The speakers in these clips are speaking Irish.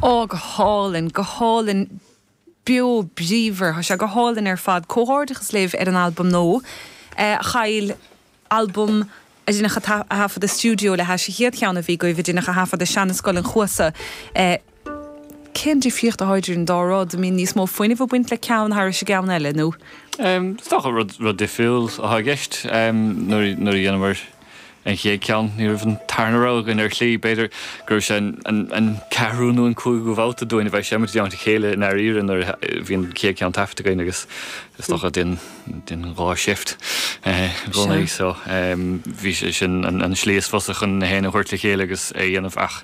Ó, go hálainn, go hálainn, beo bríomhar, tá sé go hálainn ar fad. Comhghairdeachas libh ar an albam nua, a Kyle, albam a deineadh a thaifead i stiúideo le hais an chéad cheann a bhí agaibh a deineadh a thaifead i Seanascoil an Chuasa. Cén difríocht atá idir an dá rud? An mbíonn níos mó fuinnimh ag baint le ceann thairis an gceann eile nó? Is dócha rud difriúil atá i gceist. Nuair a dhéanamar. an chéad ceann, ní raibh an tarna rogha againn ar shlí. B'fhéidir go raibh sé an ceathrú nó an cúigiú babhta dúinn a bheith ag seinm i dteannta a chéile i ndáiríre nuair a bhí an chéad ceann taifeadta againn agus is dócha bhí Niamh ag shift i gcónaí so bhí sé sin an slí is fusa chun na hamhráin a thabhairt le chéile agus é a dhéanamh ach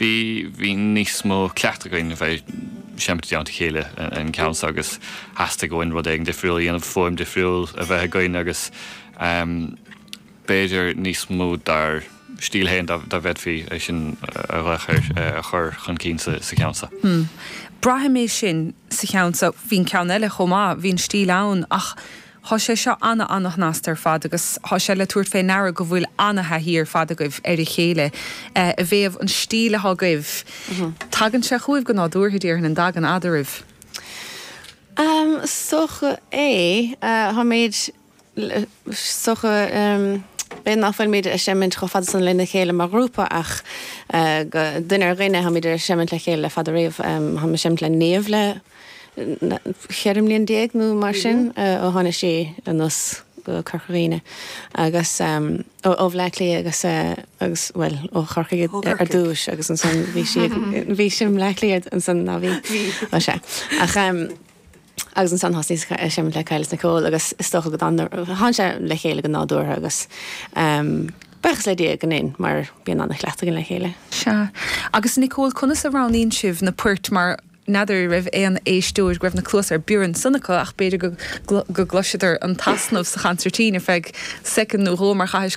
bhí bhí níos mó cleachtaidh againn a bheith seinm i dteannta a chéile don gceann so agus theastaigh uainn rud éigin difriúil a dhéanamh, fuaim difriúil a bheith againn agus. b'fhéidir, níos mó dár stíl féin, dá bhféadfaí é sin a ghlaoch air, a chur chun cinn sa cheann seo. Braithim é sin sa cheann seo. Bhí an ceann eile chomh maith, bhí an stíl ann ach tá sé seo ana-ana-shnasta ar fad agus tá sé le tabhairt fé ndeara go bhfuil ana-thaithí ar fad agaibh ar a chéile i dtaobh an stíl atá agaibh. Tagann sé chugaibh go nádúrtha, déarfainn, an dtagann eadaraibh? Is dócha é. Táimid. B'fhéidir nach bhfuilimid ag seimint chomh fada san lena chéile mar ghrúpa ach ó dhuine go duine táimid ag seimint le chéile le fada riamh. Táim ag seimint le Niamh le ceithre mbliana déag nó mar sin ó tháinig sí anuas go Corca Dhuibhne agus, ó Bhleá Cliath agus, agus, bhuel, ó Chorcaigh ar dtús agus ansan bhí sí, bhí sí i mBleá Cliath ansan, nach bhí? Bhí. Ó sea. Ach. agus ansan thosnaíos ag seimint le Kyle is Nicole agus is dócha go tháinig sé le chéile go nádúrtha agus buíochas le Dia gur dhein mar bíonn ana-chraic againn le chéile. Sea. Agus Nicole conas a roghnaíonn sibh na poirt mar n'fheadar an raibh aon éisteoir go raibh na cluasa ar bior ansan acu ach b'fhéidir gur chloiseadar an t-easnamh sa chansairtín ar feadh soicind nó dhó mar chaithfidh